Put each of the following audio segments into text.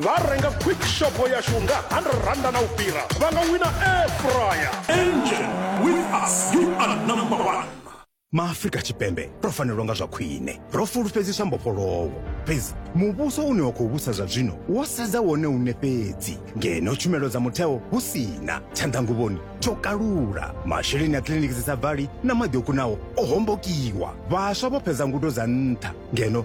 vha renga quick shopho yashu nga 100 randa na u fhira vha nga wina air fryer engine with us you are number one maafrika tshipembe ro fanelwa nga zwa khwine ro fulufhedziswa mbofholowo fhedzi muvhuso une wa khou vhusa zwa zwino wo sedza wone une fhedzi ngeno tshumelo dza mutheo hu si na tshanḓanguvhoni tsho kalula masheleni a kiliniki dzi sa bvali na maḓi o kunaho o hombokiwa vhaswa vho fhedza ngudo dza nṱha ngeno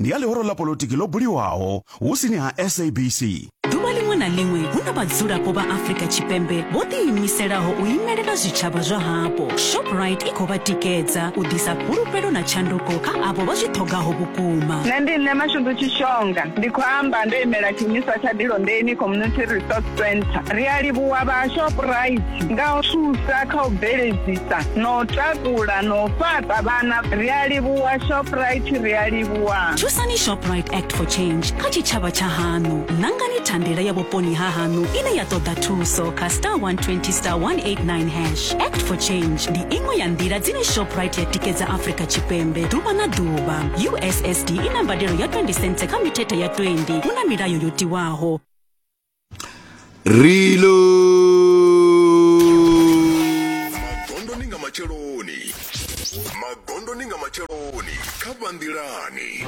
ndi ya ḽihoro ḽa polotiki ḽo buliwaho husini ha sabc ḓuvha ḽiṅwe na ḽiṅwe hu na vhadzulapo vha afrika tshipembe vho ḓiimiselaho u imelela zwitshavha zwa hapo shoprite i khou vha tikedza u ḓisa fhulufhelo na tshanduko kha avho vha zwi ṱhogaho vhukuma Nṋe ndi Nṋe Mashudu Tshishonga, ndi khou amba ndo imela tshiimiswa tsha Dilondeni Community Resource Centre. Ri a livhuwa vha Shoprite nga u thusa kha u bveledzisa no takula no fhaṱa vhana ri a livhuwa shoprite ri a livhuwa thusani shoprite act for change kha tshitshavha tsha haṋu ṋangani thandela ya vhuponi ha haṋu ine ya ṱoḓa thuso kha star 120 star 189 hash act for change ndi iṅwe ya nḓila dzine shoprite ya tikedza afrika tshipembe ḓuvha na ḓuvha ussd i na mbadelo ya 20 cents kha mithethe ya 20 hu na milayo yo tiwaho rilo magondoni nga matsheloni magondoni nga matsheloni kha vhanḓilani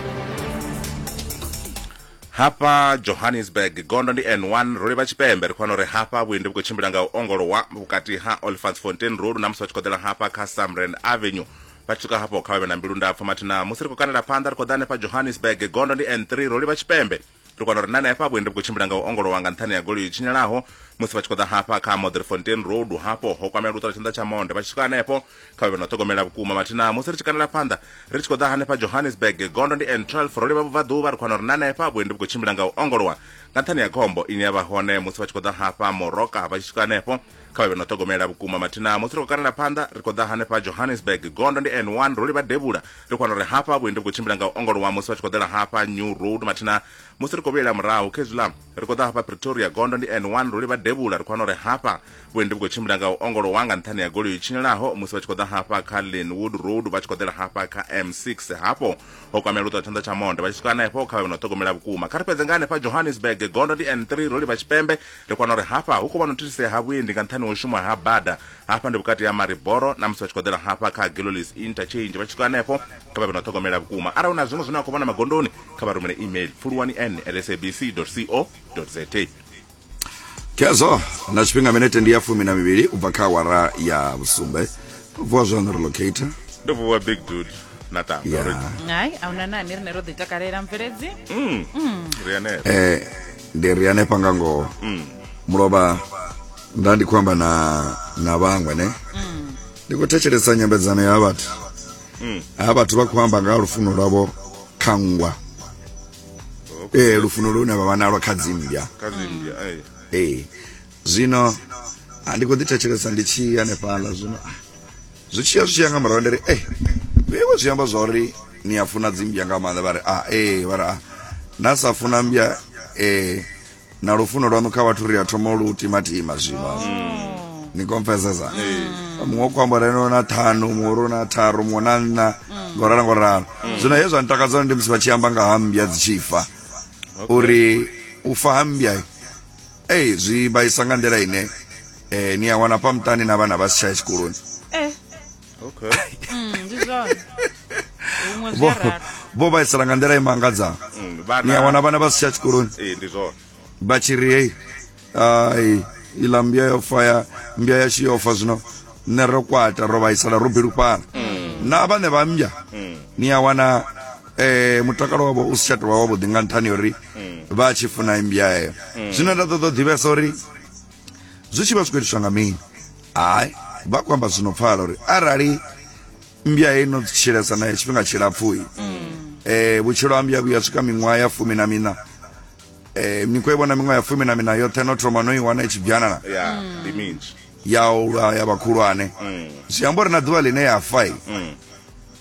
hafha johannesburg gondo ndi n1 ro livha tshipembe ri khona uri hafha vhuendi vhu khou tshimbila nga u ongolowa vhukati ha olfantsfontein road na musi vha tshi khou ḓela hafha kha samran avenue vha tshi swika hafho kha vha vhe na mbilu ndapfu mathina musi ri khou kandela phanḓa ri khou ḓa hanefha johannesburg gondo ndi n3 ro livha tshipembe ri kwana uri na henefha vhuendi vhu khou tshimbila nga u ongolowa nga nṱhani ya goloi yo tshinyalaho musi vha tshi khou ḓa hafha kha modrefontein road hafho ho kwamea luṱala tshanḓa tsha monde vha tshi swika hanefho kha vhe vha no ṱhogomela vhukuma mathina musi ri tshi kanela phanḓa ri tshi khou ḓa hanefha johannesburg gondo ndi n 12 ro livha vhubvaḓuvha ri khwana uri na henefha vhuendi vhu khou tshimbila nga u ongolowa nga nṱhani ya khombo ine ya vha hone musi vha tshi khou ḓa hafha moroka vha tshi swika hanefho kha vha vhe no ṱhogomela vhukuma mathina musi ri khou kalela phanḓa ri khou ḓa hanefha johannesburg gondo ndi n1 ro livha devhula ri khou wana uri hafha vhuendi vhu khou tshimbila nga u ongolowa musi vha tshi khou ḓela hafha new road mathina musi ri khou vhuyela murahu khezwiḽa ri khou ḓa hafha pretoria gondo ndi n1 ro livha devhula ri khou wana uri hafha vhuendi vhu khou tshimbila nga u ongolowa nga nṱhani ya goloi tshinyelaho musi vha tshi khou ḓa hafha kha linwood road vha tshi khou ḓela hafha kha m6 hafho ho kwamela u ṱwa tshanḓa tsha monde vha tshi swika hanefho kha vha vhe no ṱhogomela vhukuma kha ri fhedze nga hanefha johannesburg gondo ndi n3 ro livha tshipembe Ri kona uri hafha hu khou vha na u thithisea ha vhuendi nga nṱhani ha u shuma ha bada. Hafha ndi vhukati ha Mariboro na musi vha tshi khou ḓela hafha kha Gillolies Interchange vha tshi swika hanefho, kha vha vhe na u ṱhogomela vhukuma. Arali hu na zwiṅwe zwine vha khou vhona magondoni, kha vha rumele email, pfuluwani-n-at-sabc.co.za. Khezwo na tshifhinga minete ndi ya fumi na mivhili u bva kha awara ya vhusumbe. Ndo vuwa zwaṋu ri locator. Ndo vuwa big dude na tanga Yeah. uri hai a huna nani rine ro ḓi takalela mveledzi ri hanefho. Eh, ndi ri hanefha nga ngoho mm. mulovha nda ndi khou amba na na vhaṅwe ne mm. ndi khou thetshelesa nyambedzano ya vhathu mm. ha vhathu vha khou amba nga ha lufuno lwavho kha nngwa ee lufuno lune vha vha nalwo kha dzimmbya ee zwino ndi khou ḓi thetshelesa ndi tshi hanefhaḽa zwino zwi tshiya zwi tshiya nga murahu ndiri e vheiwe zwi amba zwa uri ni a funa dzimbya nga maanḓa vha ri a ee vha ri a na sa funa mbya ee na lufuno lwanu kha vhathu ri a thoma lu timatima zwino ni confessesa muṅwe ku amba reno na ṱhanu muṅwe ro na tharu muṅwe na nṋa ngo ralo ngo ralo zwino he zwa ntakadza ndi musi vha tshi amba nga ha mbya dzi tshi fa uri u fa ha mbya ei zwi vhaisa nga nḓila ine eh, ni a wana pa muṱani na vhana vha si tsha ya tshikoloni eh okay mm, ndi zwone huṅwe zwi Vho- a ralo vho vhaisala nga nḓila i mangadzaho Mm, vhana- ni a wana vhana vha si tsha tshikoloni ee ndi zwone vha tshi ri hei ai iḽa mbya yo fa ya mbya yashu yo fa zwino nṋe ro kwata ro vhaisala ro bilufhala na vhane vha mbya ni a wana eh mutakalo wavho u si tsha tovha wavhuḓi nga nṱhani uri vha tshi funa imbya heyo zwine nda ṱoḓa u ḓivhesa uri zwi tshi vha zwi khou itiswa nga mini hayi vha khou amba zwino pfala uri arali mmbya heyi no tshilesa nayo tshifhinga tshilapfui eh vhutshilo ha mmbya vhuya swika miṅwaha ya fumi na mina eh ni khou i vhona miṅwaha ya fumi na mina yoṱhe no thoma no i wana i tshi byanana ya ndi minzhi ya ulwa ya vhakhulwane zwi amba uri na ḓuvha ḽine ya fa i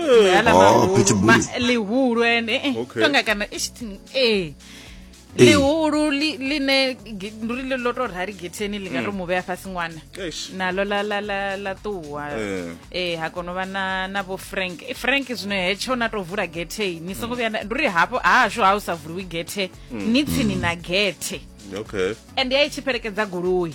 Ngala Oh, mahulu, pitbull. ma- lihulu ene eh, Okay. tonga kana ish thing, eh Eh. lihulu li- line ge- nduri le lo to rhari getheni li nga to mu vhea fhasi ṅwana Eish. nalo la la la la ṱuwa Eh. eh ha kono vha na na vho frank Eh, frank zwino hetsho na to vula gethe ni songo vhuya na- nduri hafho hahashu ha u sa vuliwi gethe ni tsini na gethe okay and ya i tshi fhelekedza goloi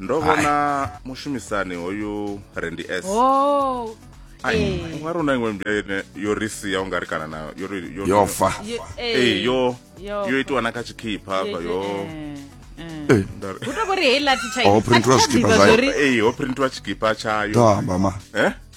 ndo vhona mushumisani hoyu rendi s oh. ungari una imwe mbila ine yo ri sia u nga ri kana nayo yo fa eh, yo yo itiwa na kha tshikhipha hafha yo kutokoriheilatihoprintiwa tshikipa tshayo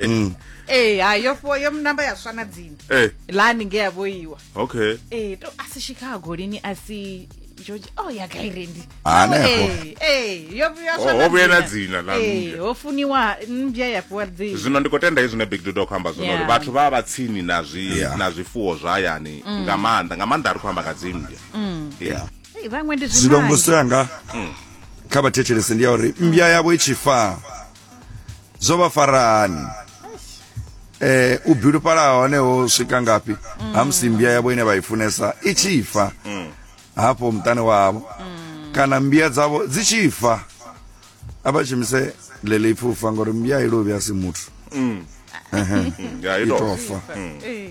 mm. ee eh, hai yo fo yo namba ya swana dzini eh. lani nge ya vhoiwa okay ee eh, to asi chicago lini asi joji o oh, ya gairendi hanehoovuya na dzina ho funiwa mbya ya fhiwa dzina zwino ndi khou tenda izwi ne big dudo khou amba zwino uri vhathu vha vha tsini na zwi na zwifuwo zwa hayani mm. nga maanḓa nga maanḓa a ri khou amba nga dzimbya mm. vhaṅwe ndi zwilongo sanga mm. kha vhathetshelese ndi ya uri mbya yavho i tshi faa zwo vha farani eh u bilufhala hone ho swika ngafhi ha musi mmbya yavho ine vha i funesa i tshi fa hafho muṱani wavho kana mmbya dzavho dzi tshi fa a vha shumise ḽeḽi ipfi u fa ngori mmbya i lovhi a si muthu ya i tou itofa Eh.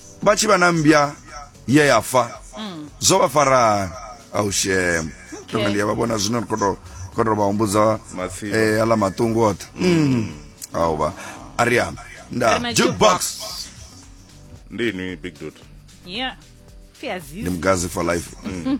vha tshi vha na mmbya ye ya fa mm. zwo vha farani aushem tonga ndi ya vha vhona zwino ri khou tou khou tou vha humbudza eh, aḽa maṱungu oṱhe mm. au vha a ri amba nda jukebox ndi inwi big dot yeah ndi mugazi for life mm.